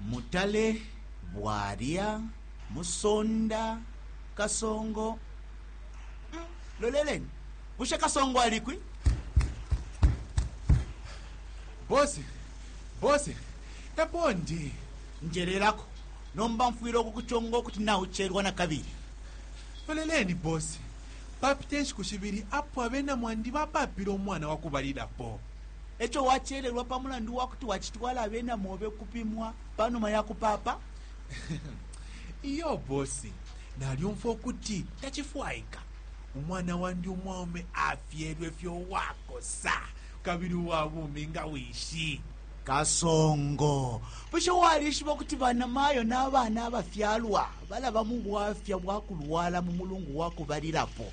mutale bwalya musonda kasongo mm, loleleni bushe kasongo alikwi bosi bosi epo ndi njelelako nomba mfwile okukuchonga okuti naucherwa na kabili loleleni bosi papita inshiku shibili apo abena mwandi bapapile umwana wa kubalilapo E co wacelelwa pa mulandu wa kuti wacitwala abena mobe ukupimwa pa numa ya kupaapa? Iyo bosi, nalyumfwa ukuti tacifwaika. Umwana wandi umwaume afyelwe fye uwakosa kabili uwa bumi nga wishi. Kasongo, bushe walishiba ukuti banamayo na bana abafyalwa balaba mu bwafya bwa kulwala mu mulungu wa kubalilapo?